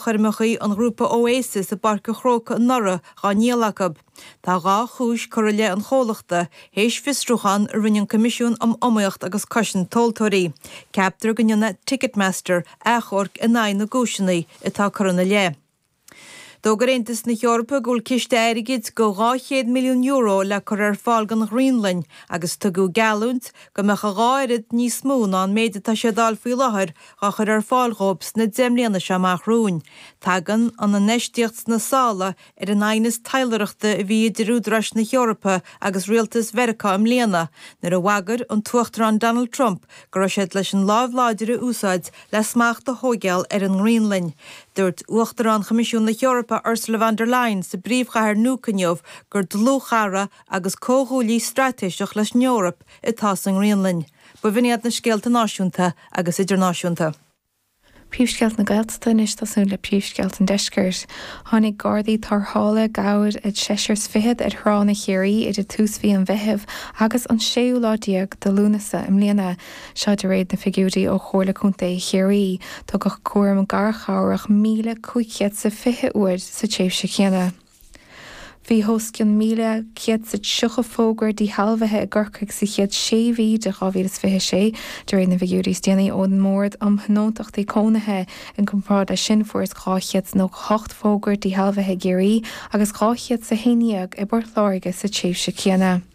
choirmeacha an ghrúpa Oasis i bPáirc an Chrócaigh anuraidh á ndíol acu. Tá dhá chúis curtha i leith an chomhlachta, théis fiosrúchán a rinne an Coimisiún um Iomaíocht agus Cosaint Tomhaltóirí. Ceaptar go ndéanfaidh Ticketmaster achomharc in aghaidh na gcúiseanna atá curtha ina leith. D'fhógair Aontas na hEorpa go bhfuil ciste airgid de €200 milliún le cur ar fáil don Ghraonlainn agus tugadh geallúint go mbeadh a dhá oiread níos mó ná an méid atá siad a fháil faoi láthair á chur ar fáil dhóibh sna deich mbliana seo amach romhainn. Tagann an infheistíocht sna sála ar an aighneas taidhleoireachta a bhí idir údaráis na hEorpa agus rialtas Mheiriceá i mbliana, nuair a bhagair an tUachtarán Donald Trump go raibh siad leis an láimh láidir a úsáid le smacht a thóigeáil ar an nGraonlainn. Dúirt Uachtarán Choimisiún na hEorpa Ursula von der Leyen sa bpríomhchathair Nuuk inniu gur dlúthchara agus comhghuaillí straitéiseach leis an Eoraip atá sa nGraonlainn. B'in iad na scéalta náisiúnta agus idirnáisiúnta. Príomhscéalta na Gaeltachta anois ag tosú le príomhscéalta an deiscirt. Tháinig gardaí tarrthála i gcabhair ar sheisear 's fichead ar thránna Chiarraí idir tús mhí an Mheithimh agus an séú lá déag de Lúnasa i mbliana. Seo de réir na figiúirí ó Chomhairle Contae Chiarraí. Tugadh cúram garchabhrach míle cúig chéad 's a fiche uair sa tréimhse chéanna. Bhí os cionn 1,130 fógra díshealbhaithe i gCorcaigh sa chéad sé mhí de 2026, de réir na bhfigiúirí is déanaí ón mBord um Thionóntachtaí Cónaithe. I gcomparáid leis sin, fuarthas 298 fógra díshealbhaithe i gCiarraí agus 211 i bPort Láirge sa tréimhse céanna.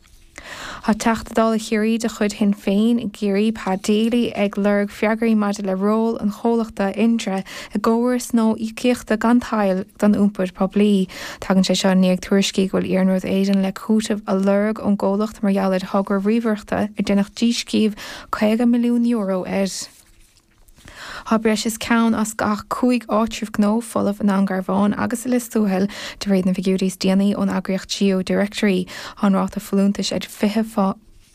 Tá Teachta Dála Chiarraí de chuid Shinn Féin i gCiarraí, Pa Daly, ag lorg freagraí maidir le ról an chomhlachta Indra i gcóras nua íocaíochta gan tadhall don iompar poiblí. Tagann sé seo i ndiaidh tuairiscí go bhfuil Iarnród Éireann le cúiteamh a lorg ón gcomhlacht mar gheall ar thogra ríomhaireachta ar déanadh díscríobh €50 milliún air. Tá breis is ceann as gach cúig áitreabh gnó folamh i nDún Garbhán agus i Lios Tuathail, de réir na bhfigiúirí is déanaí ón eagraíocht Geo Directory. Tá an ráta folúntais ag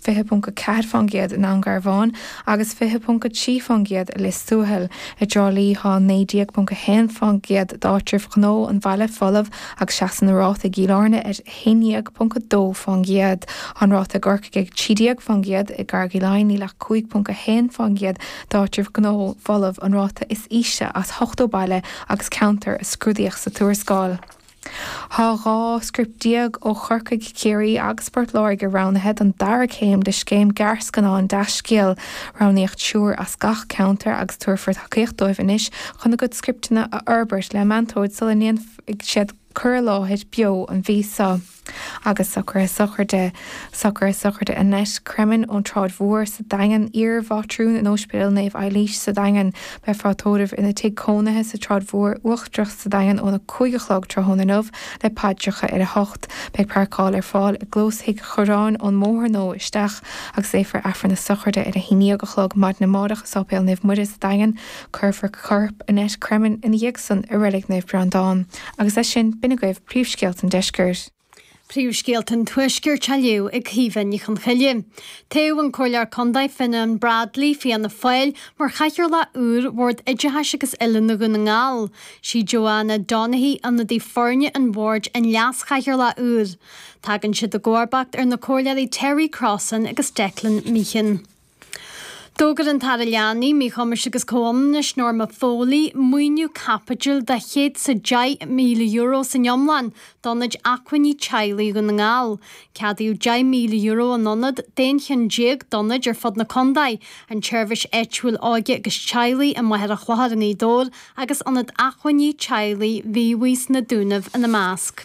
20.4% i nDún Garbhán agus 20.3% i Lios Tuathail. I dTrá Lí tá 19.1% d'áitribh ghnó an bhaile folamh agus seasann an ráta i gCill Airne ar 11.2% an ráta i gCorcaigh, ag 13% i gCarraig Laighin, níl ach 5.1% d'áitribh ghnó folamh, an ráta is ísle as ochtó baile agus ceantar a scrúdaíodh sa tuarascáil. Tá 12 script ó Chorcaigh, Ciarraí agus Port Láirge roghnaithe don dara céim de scéim gearrscannán Deascéal. Roghnaíodh triúr as gach ceantar agus tabharfar tacaíocht dóibh anois chun a gcuid scripteanna a fhorbairt le meantóir sula ndéanfaidh siad cuir i láthair beo an mhí so. Agus socruithe sochraide, socruithe sochraide Annette Cremin ón tSráid Mhór sa Daingean, iarmhátrún in Óispidéal Naomh Eilís sa Daingean, beifear á tórramh ina tigh cónaithe sa tSráid Mhór Uachtarach sa Daingean óna cúig a chlog tráthnóna inniu le paidreacha ar a hocht. Beidh páirceáil ar fáil i gclós thigh Churráin ón mbóthar nua isteach agus léifear Aifreann a sochraide ar a haon déag a chlog maidin amárach i Sáipéal Naomh Muire sa Daingean. Cuirfear corp Annette Cremin ina dhiaidh san i Reilig Naomh Breandán agus leis sin b'in agaibh príomhscéalta an deiscirt. Príomhscéalta an tuaiscirt á léamh ag Caoimhe Ní Chonchoille. Toghadh an Comhairleoir Contae Fionán Bradley, Fianna Fáil, mar chathaoirleach úr Bhord Oideachais agus Oiliúna Dhún na nGall. Sí Joanna Donaghy, ionadaí foirne an Bhoird, an leaschathaoirleach úr. Tagann siad i gcomharbacht ar na Comhairleoirí Terry Crossan agus Declan Meehan. D'fhógair an tAire Leanaí, Míchumais agus Comhionannais, Norma Foley, maoiniú caipitil de €110,000 san iomlán d'ionaid acmhainní teaghlaigh Dhún na nGall. Ceadaíodh €10,000 an ionad d'aon cheann déag d'ionaid ar fud na contae, an tSeirbhís Áitiúil Óige agus Teaghlaigh i Machaire Chlochair i nGaoth Dobhair agus Ionad Acmhainní Teaghlaigh Mhíobhaigh sna Dúnaibh ina measc.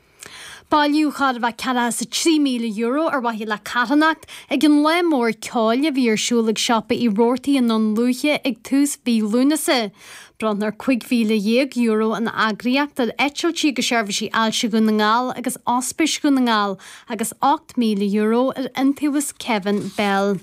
Bailíodh chóir a bheith ceathracha is a trí míle euro ar mhaithe le carthanacht ag an lá mór ceoil a bhí ar siúl ag siopa Uí Robhartaigh i nDún Lúiche ag tús mhí Lúnasa. Bronnadh cúig mhíle dhéag euro an eagraíocht ar Eitiltí agus Seirbhísí Ailse Dhún na nGall agus Ospís Dhún na nGall agus ocht míle euro ar Iontaobhas Kevin Bell.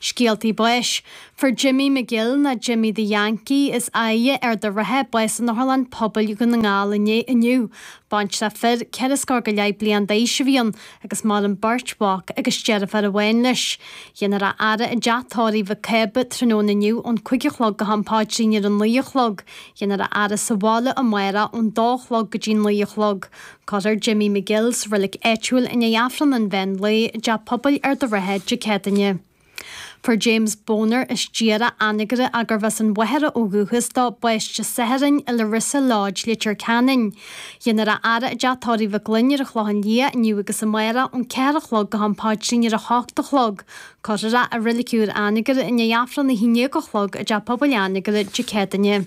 Scéaltaí Báis, Fuair Jimmy McGill, nó Jimmy the Yankee, as Aighe, Ard a' Rátha, bás in Otharlann Pobail Dhún na nGall inniu. Baintreach fir, ceithre scór go leith bliain d'aois a bhí ann agus maireann beirt mhac agus deirfiúr amháin leis. Dhéanfar a fhaire i dteach tórraimh Mhic Cába tráthnóna inniu ón cúig a chlog go ham páidrín ar a naoi a chlog. Dhéanfar a fhaire sa bhaile amárach ón dó a chlog go dtí naoi a chlog. Cuirfear Jimmy McGill sa reilig áitiúil i ndiaidh Aifreann an Mheán Lae i dTeach Pobail Ard a' Rátha Dé Céadaoine. Fuair James Boner as Dír Anagaire, gurbh as an Mhachaire ó dhúchas dó, bás Dé Sathairn i Larissa Lodge, Leitir Ceanainn. Dhéanfar a fhaire i dTeach Tórraimh Mhic Fhloinn ar an Chlochán Liath inniu agus amárach ón ceathair a chlog go hAm Páidrín ar a hocht a chlog. Cuirfear é i Reilig Úr Anagaire i ndiaidh Aifreann a haon dhéag a chlog i dTeach Pobail Anagaire Dé Céadaoine.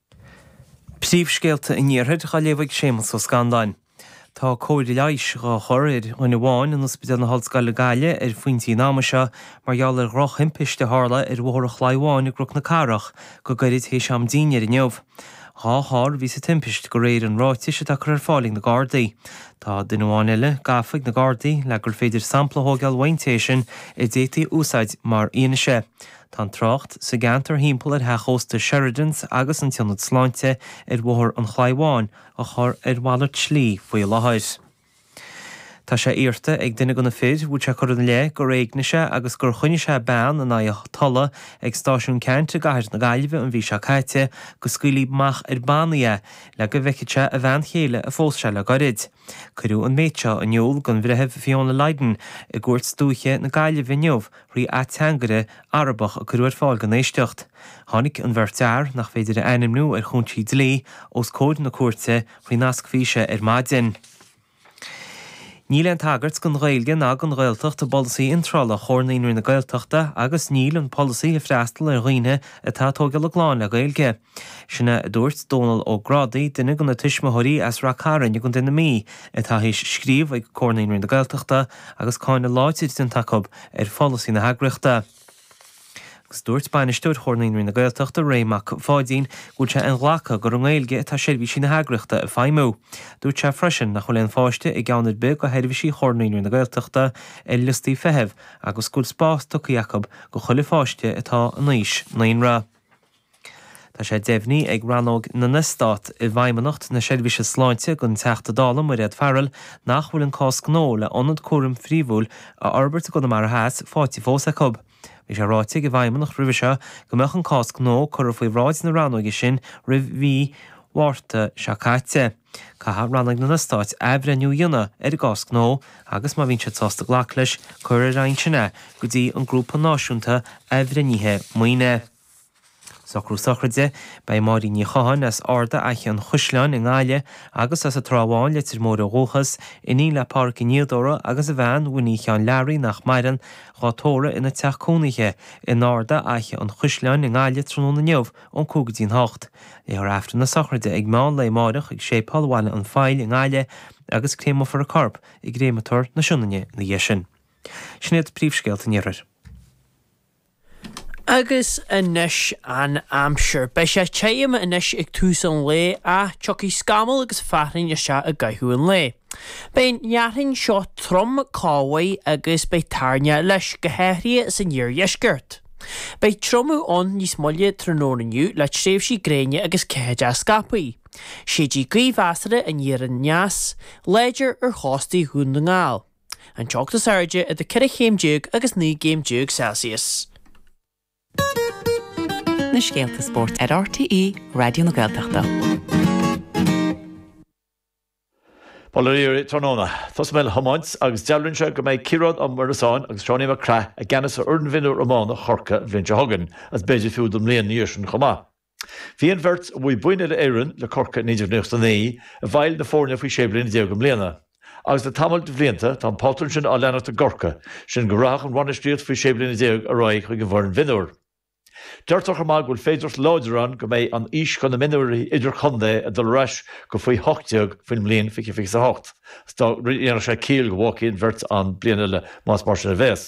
Príomhscéalta an iarthair dhá léamh ag Séamas Ó Scanláin. Tá cóir leighis dhá chur ar dhuine amháin in Ospidéal na hOllscoile Gaillimh ar phointí an ama seo mar gheall ar dhrochthimpist a tharla ar Bhóthar an Chlaí Bháin i gCnoc na Cathrach go gairid théis am dinnéir inniu. Dhá charr a bhí sa timpist go réir an ráitis atá curtha ar fáil ag na Gardaí. Tá duine amháin eile gafa ag na Gardaí le gur féidir sampla a thógáil uaidh an té sin a d'fhéadfaí a úsáid mar fhianaise. Tá an trácht sa gceantar thimpeall ar Theach Ósta Sheridans agus an tIonad Sláinte ar Bhóthar an Chlaí Bháin á chur ar mhalairt slí faoi láthair. Tá sé iarrta ag duine de na fir, a bhfuil sé curtha ina leith gur éignigh sé agus gur choinnigh sé bean in aghaidh a tola ag Stáisiún Ceannt i gcathair na Gaillimhe an mhí seo caite, go scaoilfí amach ar bannaí é le go bhfeicfeadh sé a bhean chéile a phós sé le goirid. Cuireadh an méid seo in iúl don Bhreitheamh Fiona Lydon i gCúirt Dúiche na Gaillimhe inniu thrí ateangaire Arabach a cuireadh ar fáil don éisteacht. Tháinig an bheirt fhear, nach féidir a ainmniú ar chúinsí dlí, os comhair na cúirte faoi nasc físe ar maidin. Níl aon tagairt don Ghaeilge ná don Ghaeltacht i bpolasaí iontrála Chomhar Naíonraí na Gaeltachta agus níl an polasaí ag freastal ar dhaoine atá ag tóigeáil a gclann le Gaeilge. Sin é a dúirt Dónall Ó Grádaigh, duine de na tuismitheoirí as Ráth Chairn i gContae na Mí atá théis scríobh ag Comhar Naíonraí na Gaeltachta agus cáineadh láidir déanta acu ar pholasaí na heagraíochta. Agus dúirt Bainisteoir Chomhar Naíonraí na Gaeltachta, Ray Mac Pháidín, go bhfuil sé inghlactha gur i nGaeilge atá seirbhísí na heagraíochta ag feidhmiú. Dúirt sé freisin nach bhfuil aon pháiste i gceann ar bith de sheirbhísí Chomhar Naíonraí na Gaeltachta ar liostaí feithimh agus go bhfuil spás tugtha acu do chuile pháiste atá in aois naíonra. Tá sé deimhnithe ag Rannóg na nEstát i bhFeidhmeannacht na Seirbhíse Sláinte don Teachta Dála Mairéad Farrell nach bhfuil an cás gnó le ionad cúraim phríomhúil a fhorbairt i gConamara Theas fáighte fós acu. Bhí sé ráite ag an bhFeidhmeannacht roimhe seo go mbeadh an cás gnó curtha faoi bhráid na rannóige sin roimh mhí Mhárta seo caite. Caithfidh Rannóg na nEstát athbhreithniú a dhéanamh ar an gcás gnó agus má bhíonn siad sásta glacadh leis, cuirfear ansin é go dtí an Grúpa Náisiúnta Athbhreithnithe Maoine. Socrú sochraide, Beidh Máirín Ní Chatháin as Arda Fhaiche an Chaisleáin i nGaillimh agus as an Trá Bháin, Leitir Móir ó dhúchas, iníon le Pádhraic Ó Niadóra agus a bhean, Winnie Sheáin Learaí, nach maireann, dhá tórramh ina teach cónaithe in Arda Fhaiche an Chaisleáin i nGaillimh tráthnóna inniu ón cúig go dtí an hocht. Léifear Aifreann na sochraide ag meán lae amáireach ag Séipéal Bhaile an Phoill i nGaillimh agus créameofar a corp i gcréamatóir na Sionainne ina dhiaidh sin. Sin iad príomhscéalta an iarthair. Agus anois an aimsir. Beidh sé tirim anois ag tús an lae ach tiocfaidh scamaill agus fearthainn isteach i gcaitheamh an lae. Beidh an fhearthainn seo trom go maith agus beidh toirneach leis, go háirithe san iardheisceart. Beidh triomú ann níos moille tráthnóna inniu le tréimhsí gréine agus ceathaideacha scaipthe. Séidfidh gaoth mheasartha aniar aneas, láidir ar chóstaí Dhún na nGall. An teocht is airde idir ceithre chéim déag agus naoi gcéim déag Celsius. na scéalta spóirt ar RTÉ Raidió na Gaeltachta. Bail oraibh tráthnóna, tosóidh mé le hiomáint agus dealraíonn sé go mbeidh Ciarán Ó Muireasáin agus Seánie Mac Craith i gceannas ar fhoireann mhionúr iomána Chorcaí an bhliain seo chugainn agus b'fhéidir fiú don mbliain ina dhiaidh sin chomh maith. Bhí an bheirt a bhuaigh boinn Uile-Éireann le Corcaigh i naoi déag nócha a naoi i bhfeighil na foirne faoi 16 bliana i mbliana agus le tamall de bhlianta tá an pátrún sin á leanacht i gCorcaigh, sin go rachadh an bhainistíocht faoi 16 bliana ar aghaidh chuig an bhfoireann mhionúr. Deirtear chomh maith go bhfuil féidearthacht láidir ann go mbeidh an aois do na mionúirí idirchontae a dul ar ais go faoi hocht déag faoin mbliain 2028 so dhéanfadh sé ciall go bhfágfaí an bheirt ann bliain eile más mar sin a bheas.